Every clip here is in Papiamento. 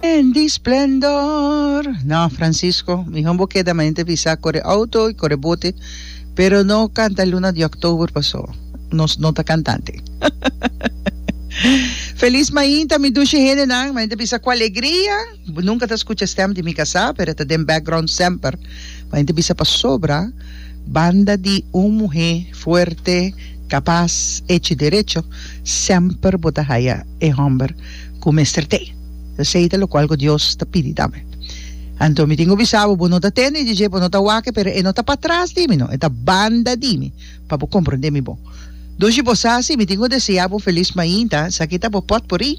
En di splendor. No Francisco, mihor bo keda manente bisa kore auto y kore bote, pero no canta Luna di October paso nos no ta cantante. Feliz mainta mi dushi hendenan, manente bisa cu alegria. Bo nunka ta skucha stèm di mi kasá, pero e ta den bèkgròunt semper. Bo henter bisa pasobra banda di un muhé fuerte, kapas, echi i derecho, semper bo ta haya e hòmber ku mester te. Esei ta lokual ku Dios ta pidi tambe. Anto mi tin ku bisa bo, bo no ta tende i dje dje bo no ta wak e, pero e no ta patras di mi, no, e ta banda di mi. pa bo komprondé mi bon. Dor si bo sa si mi tin ku deseá bo felis mainta, esaki ta bo pòtpuri.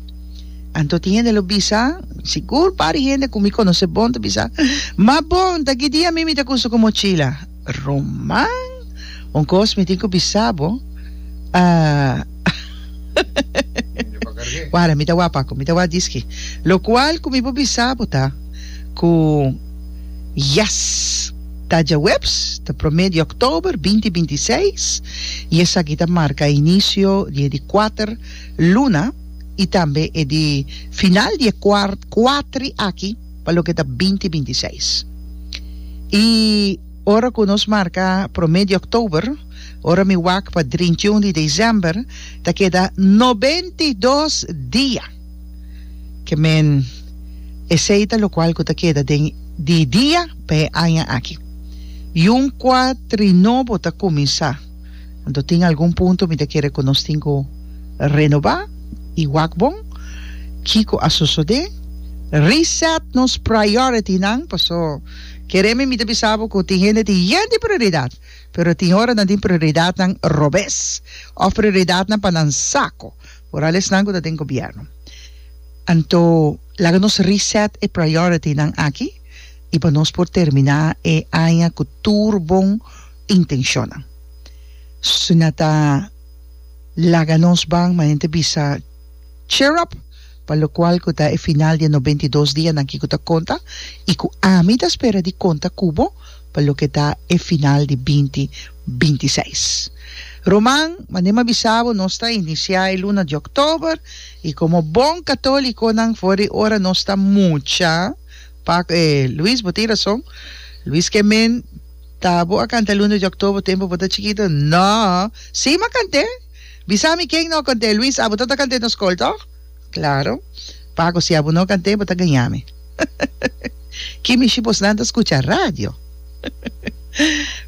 Anto tin hende lo bisa, sigur pari hende ku mi konosé bon ta bisa, Mas bon ta ki dia mi mi ta kusa ku mochila. Roman, un kos mi tin ku bisa bo, Wara mi ta wak paku, mi ta wak diski. Lokual ku mi por bisa bo ta ku, Yes! Ta dje webs ta promé di òktober binti binti i seis i esaki ta marka inisio di e di kuater luna i tambe e di final di e kuart kuatri aki pa loke ta binti binti i seis. I ora ku nos marka promé di òktober ora mi wak pa drintiun di desèmber ta keda nobenti dos dia. Ke men, esei ta lokual ku ta keda den di dia pa e aña aki. Yun kua tri nobo ta kuminsá. Anto tin algun punto mi ta kere ku nos tin ku renobá i wak bon. Kiko a sosodé? Reset nos priority-nan, paso kere mi mi ta bisa bo ku tin hende tin yen di prioridat, pero tin ora nan tin prioridatnan robes òf prioridatnan pa nan sako. Ora al esnan cu ta den gobierno. Anto laga nos reset e priority nan aki y pa nos por termina e aña cu tur bon intencion-nan. Su na ta laga nos ban ma hende bisa cheer up pa locual cu ta e final di e noventa y dos dianan aki cu ta conta y cu ami ta spera di conta cu bo pa loke ta e final di binti binti seis. Roman, manera mi a bisa bo nos ta inicia e luna di october y como bon catoliconan for di ora nos ta mucha pa e Luis bo tin razon Luis ke men ta bo a canta luna di october tempo bo ta chikito no si mi a cant'e bisa mi ken no a cant'e Luis abo ta ta cant'e nos col toch? Claro. Paco si abo no cant'e bo ta gañami. Kimi shi bosnan ta scucha radio.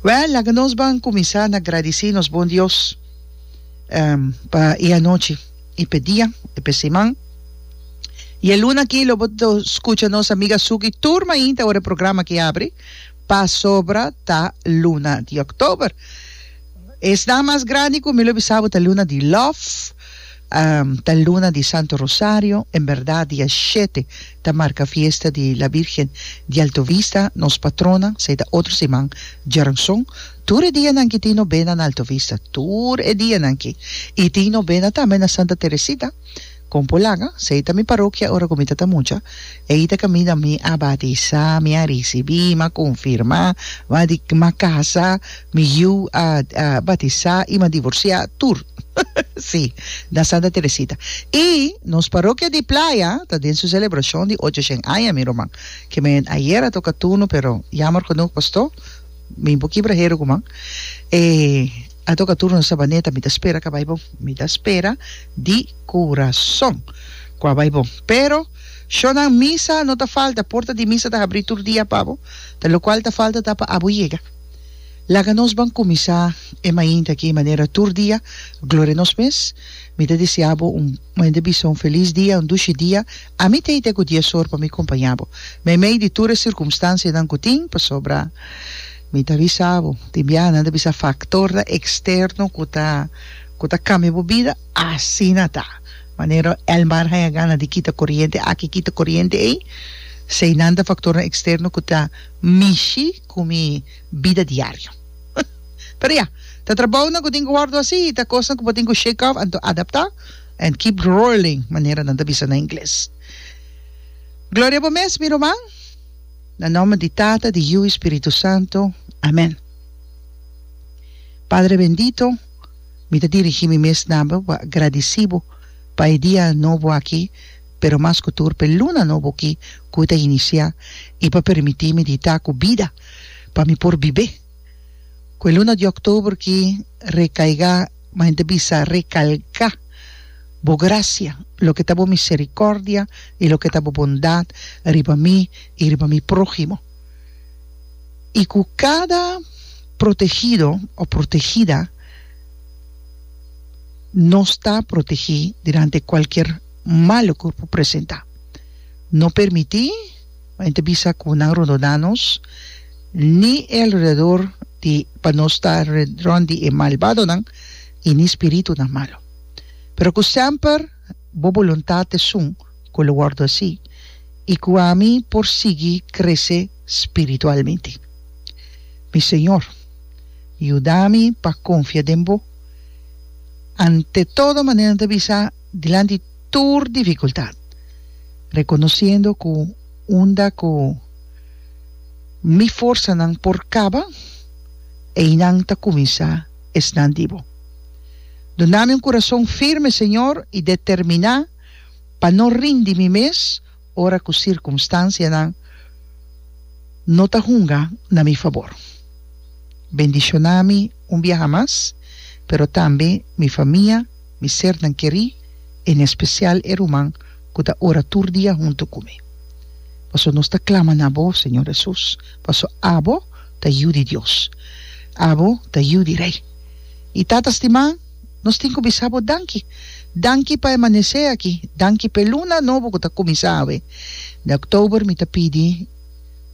Well laga nos ban cuminsa na gradici nos bon Dios pa e anochi y p'e dia y p'e siman. Y e luna aki lo bo ta scucha nos amiga Suki tur mainta ora e programa aki abri pasobra ta luna di October. Esnan mas grandi cu mi lo bisa bo ta luna di love. Ta luna di Santo Rosario, en berdad dia shete ta marca fiesta di La Virgen di Alto Vista, nos patrona, sa e ta otro siman djaranson. Tur e dianan ki tin nobena na Alto Vista, tur e dianan ki, y tin nobena tambe na Santa Teresita, Compo Laga, sa e ta mi parokia ora cu mi ta ta mucha, ei ta caminda mi a batisa, mi a ricibi, mi a confirma, mi a di, mi a casa, Mi yu a batisá i mi a divorsiá tur. Sí, na Santa Teresita. I nos parokia di Playa ta den su selebrashon di ochoshen aña, mi ruman. Ke men ayer a toka turno, pero yammer genoeg, pastó, mi un poki braheru ku man, e a toka turno na Sabaneta. Mi ta spera ku a bai bon, mi ta spera di kurason ku a bai bon. Pero shornan misa no ta falta, porta di misa ta habrí tur dia pa bo, ta lokual ta falta ta pa abo yega. Laga nos ban kuminsá e mainta aki manera tur dia, Gloria nos mes. Mi ta desea bo un mende bisa un felis dia, un dushi dia. Ami ta hita ku dies or pa mi kompañá bo meimei di tur e sirkumstansianan ku tin, pasobra mi ta bisa bo tin biaha nan ta bisa faktornan eksterno ku ta ku ta kambia bo bida. Asina ta manera Elmar haña gana di kita koriente aki, kita koriente ei, esei nan ta faktornan eksterno ku ta mishi. cu mi bida diario. Pero ya, ta trabounan cu tin cu wordo así, ta cosnan cu bo tin cu shake off anto adapta and keep rolling, manera nan ta bisa na ingles. Gloria bo mes, mi ruman, na nomber di Tata, di Yu i Spiritu Santo. Amen. Padre bendito, mi ta dirigi mi mes na bo pa gradici bo pa e dia nobo aki, pero mas ku tur p'e luna nobo ki ku ta inisiá i pa permití mi dita ku bida pa mi por bibé ku e luna di òktober ki rekaigá ma hende bisa rekalgá bo grasia loke ta bo miserikòrdia i loke ta bo bondat riba mi i riba mi próhimo i ku kada protehido o protegida nos ta protegí durante kualkier. malo cu por presenta. No permiti pa hende bisa cu nan rondona nos ni e alrededor di pa nos ta rond di e malbadonan y ni spiritunan malo. Pero cu semper bo boluntad esun cu lo wordo así y cu ami por sigui crece spiritualmente. Mi Señor, yuda mi pa confia den bo ante todo manera nan ta bisa. Dilanti tur dificultad, reconociendo cu unda cu mi forsanan por caba, eynan ta cuminsa esnan di Bo. Dunami un curazon firme, Señor, y determina pa no rindi mi mes, Ora ku sirkunstansianan no ta hunga na mi fabor. Bendishoná mi un biaha mas, pero tambe mi famia, mi sernan kerí, en espesial e ruman ku ta ora tur dia huntu ku mi. Paso nos ta klama na Bo, Señor Hesus, paso Abo ta Yu di Dios. Abo ta Yu di Rei. Mi tata stimá! Nos tin cu bisa bo danki. Danki pa e manece aki. Danki p'e luna nobo cu ta cuminsa awe. D'a October mi ta pidi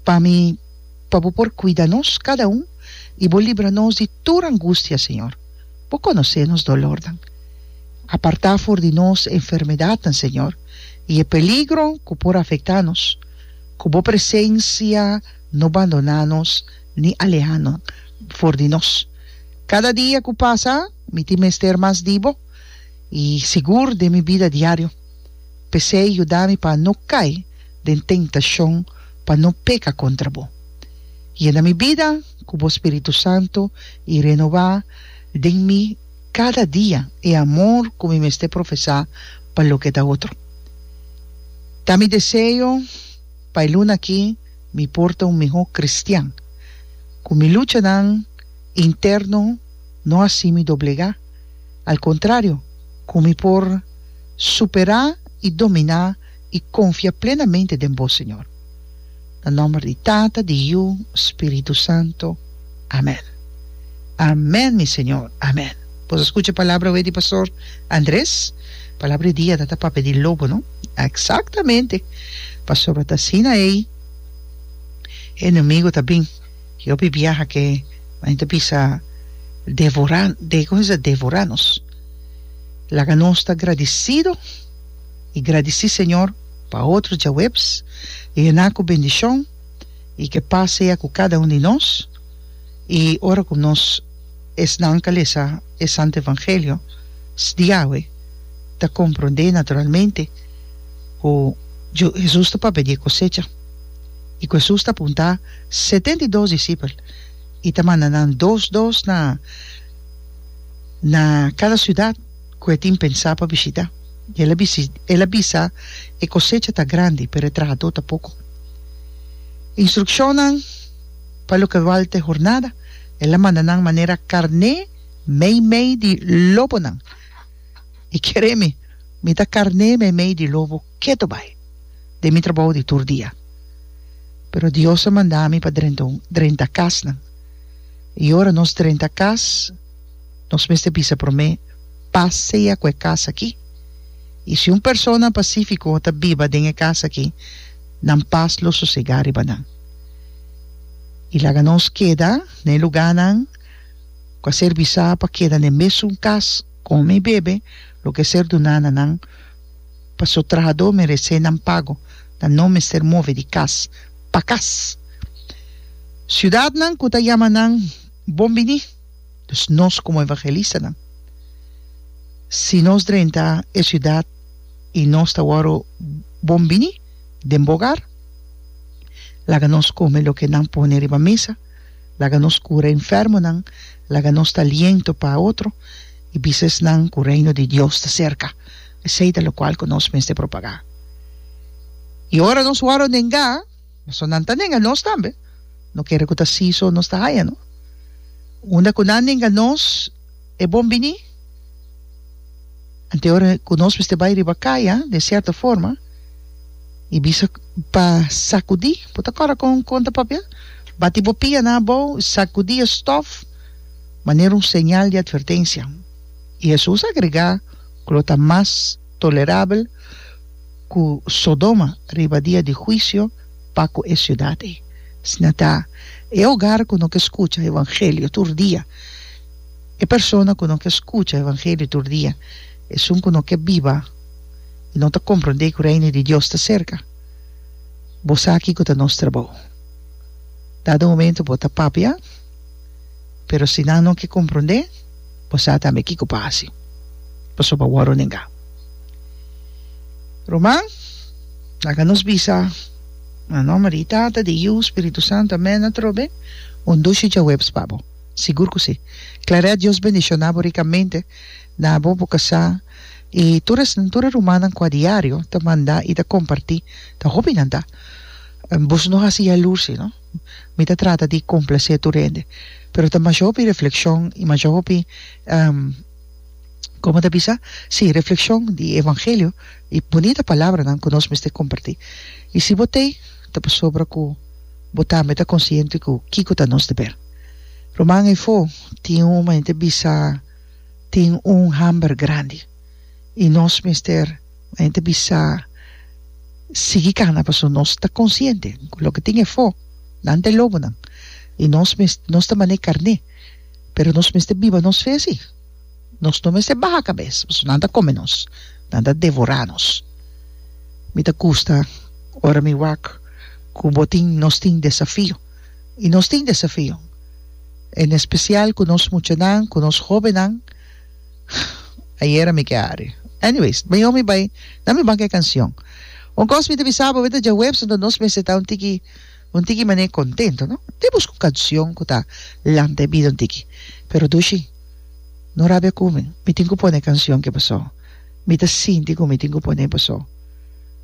pa mi pa bo por cuida nos cada un y bo libra nos di tur angustia, Señor. Bo conoce nos dolornan. Aparta for di nos e enfermedadnan, Señor, y e peligro cu por afecta nos. Cu bo presencia no bandona nos. ni alehano for di nos. Kada dia ku pasa mi tin mester mas di bo i sigur den mi bida diario. P'esei yuda mi pa no kai den tentashon pa no peka kontra bo. Yena mi bida ku bo spiritu santu i renobá den mi kada dia e amor ku mi mester profesá pa loke ta otro. Ta mi deseo pa e luna aki. mi por ta un mihó kristian. Ku mi luchanan interno no a hasi mi doblegá. Al kontrario, ku mi por superá i dominá i konfia plenamente den Bo, Señor. Na nòmber di Tata, di Yu, Spiritu Santo. Amen. Amen mi Señor. Amen. Por escucha palabra wee di Pastor Andres. Palabra di dia ta ta papia di lobo no. Exactamente. Pasobra ta asina ei enemigo ta bin. Yopi biaha ke men ta bisa devora como se dice devora nos. Laga nos ta gradicido y gradici Señor pa otro djaweps. Yena cu bendicion. y ke paz sea cu cada un di nos y ora cu nos esnan ta lesa e Santo Evangelio sdiawe ta comprende naturalmente cu Jesus ta papia di e cosecha y cu Jesus ta punta setenta y dos discipel y ta manda nan dos dos na na cada ciudad. ku e tin pensá pa bishitá, i el a bisi, el a bisa, E kosecha ta grandi, pero e trahadó ta poko. Instrukshonnan pa loke balta e hornada, el a manda nan manera karné meimei di lobonan. I kere mi, mi ta karné meimei di lobo ketu bai den mi trabou di tur dia. Pero Dios a manda mi pa drenta un, drenta kasnan. I ora nos drenta kas, nos mester bisa promé, Pas sea ku e kas akí. I si un persona pasífiko ta biba den e kas akí, nan pas lo sosegá riba nan. I laga nos keda na e lugánan ku a ser bisá pa keda na e mésun kas, kome i bebe lo ke ser duná na nan, pasobra trahadó meresé nan pago, nan no mester move di kas pa kas. Siudatnan ku ta yama nan Bon biní! Dus nos komo evangelistanan, si nos drenta e siudat i nos ta wòru bon bini den bo ogar, laga nos kome loke nan pone riba mesa, laga nos kura enfermonan, laga nos ta aliento pa otro i bisa esnan ku Reino di Dios ta serka. Esei ta lokual ku nos mester propagá. I ora nos wòru nengá. So nan ta nenga nos tambe. No kere ku ta si so nos ta haña no. Unda ku nan nenga nos e bon bini. Anto ora ku nos mester bai riba kaya den sierto forma i bisa pa sakudí. Bo ta kòrda kon kon ta papia? Bati bo pia na abou, sakudí e stòf manera un señal di atvertensia. I Hesus agregá ku lo ta mas. tolerabel ku Sodoma riba dia di huisio pa ku e siudat ei. Esna ta e ogar ku no ke skucha evangelio tur dia, e persona ku no ke skucha evangelio tur dia, esun ku no ke biba i no ta komprondé ku Reino di Dios ta serka. Bo sa kiko ta nos trabou. Dado momento bo ta papia. Pero si nan no ke komprondé, bo sa tambe kiko pa hasi, pasobra bo a renegá. Ruman, laga nos bisa na nòmber di Tata, di Yu, Spiritu Santu, amèn atrobe, un dushi djahuebs pa bo. Sigur ku si. Claret, Dios bendishoná bo rikamente na bo, bo kasá i tur esnan, tur e rumannan ku a diario ta mandá i ta kompartí, ta hopinan ta. Boso no hasi yalursi no. Mi ta trata di complacé tur hende. Pero ta masha hopi reflexion y masha hopi como ta bisa? Sí, reflexion di evangelio y bonita palabranan cu nos mester comparti. Y si bo t'ei, ta pasobra cu bo tambe ta consciente cu kico ta nos deber. Ruman efo tin un momente bisa tin un hamber grandi y nos mester. Nan ta bisa, Sigui kana pasobra nos ta konsiente ku loke tin efo nan ta e lobonan i nos mes nos ta manera e karné pero nos mester biba nos fe así. Nos no mester baha kabes pasobra nan ta kome nos, nan ta devorá nos. Mi ta kusta ora mi wak ku bo tin nos tin desafio i nos tin desafio en espesial ku nos muchanan ku nos hóbennan. Hj ayera mi ke ari. Anyways, bañó mi bai na mi banka e kansion. Un kos mi ta bisa bo, awor ta djahuebs anto nos mester ta un tiki un tiki manera kontento, no? Te buska un kansion ku ta lanta e bida un tiki. Pero Dushi, no rabia ku mi, mi tin ku pone e kansion ke pasó. Mi ta sinti ku mi tin ku pon'é pasó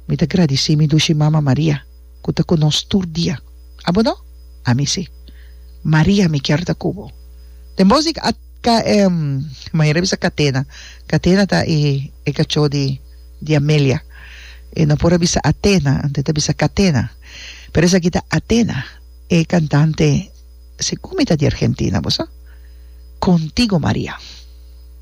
mi ta gradisí mi Dushi Mama Maria ku ta ku nos tur dia. Abo no? Ami si. Maria mi kier ta ku bo. Den bos di a. Ta e manera bisa Catena. Catena ta e e cachó di di Amelia. E no por a bisa Atena, anto e ta bisa Catena. Pero esaki ta Atena, e cantante, segun mi ta di Argentina, bo sa? Contigo Maria.